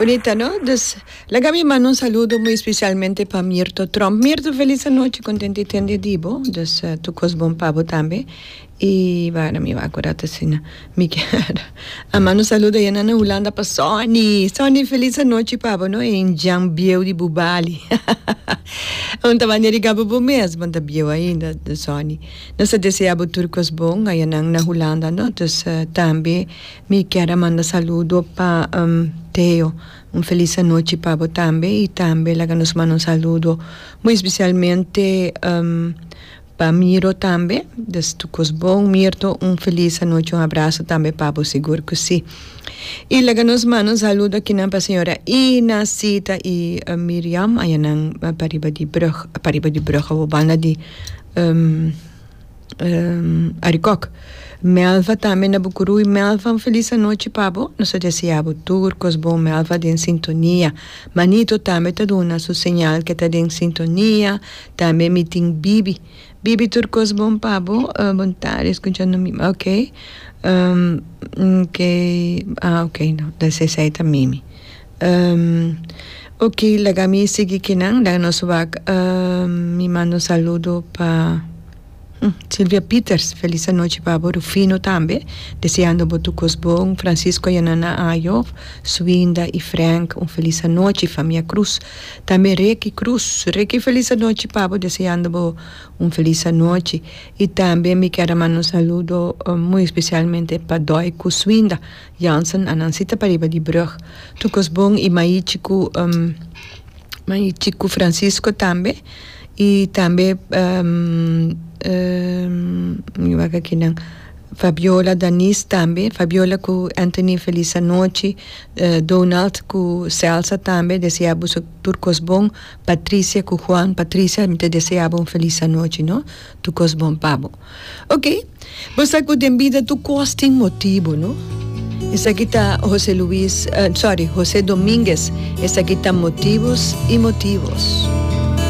Bonita no dus laga mi manda un saludo muy especialmente pa Mirto Trump Mirto feliz anochi contento te tende di bo dus tur cos bon pa bo tambe y wara mi wou a cora ta asina mi kier a manda un saludo ayana na Hulanda pa Sonny Sonny feliz anochi pa bo no y Jan bieu di bubali aun ta manera riga bo bo mes bo ta bieu ainda Sonny nos ta desea bo tur cos bon ayanan na Hulanda no dus tambe. Mi kier a manda saludo pa Theo, un felis anochi pa bo tambe, y tambe laga nos manda un saludo muy especialmente pa Miro tambe, des tu cos bon Mirto, un felis anochi, un abrazo tambe pa bo sigur cu si. Y laga nos manda un saludo akinan pa señora Ina, Sita y Miriam, ayanan pariba di brug, pariba di brug awo banda di Arikòk. Melva tambe na Bucuruy. Melva un felis anochi pa bo. Nos ta deseá bo tur kos bon Melva den sintonia. Manito tambe ta duna su señal ke ta den sintonia, tambe mi tin Bibi. Bibi tur kos bon pa bo. Bon tarde escuchando mi ok ok ah ok no ta esei ta mimi. Umm ok laga mi sigui kinan laga nos wak umm mi manda un saludo pa Silvia Peters felis anochi pa bo Rufino tambe deseando bo tur cos bon Francisco Yanana Ayo Suinda y Frank un felis anochi famia Cruz tambe Ricky Cruz Ricky felis anochi pa bo deseando bo un felis anochi y tambe mi kier a manda un saludo muy specialmente pa Doy cu Suinda. Jansen a nan sita pariba di brug. Tukos bon i mai chiku um mai chiku Francisco tambe i tambe um um mi wak aki nan Fabiola Danis tambe Fabiola ku Anthony felis anochi e Donald ku Celsa tambe desea boso tur kos bon Patricia ku Juan Patricia mi ta desea bo un felis anochi no. Tu kos bon pa bo. Ok, bo sa ku den bida tur kos tin motibu, no? Esaki ta Jose Luis, uh, sorry, Jose Dominguez, esaki ta Motivos y Motivos.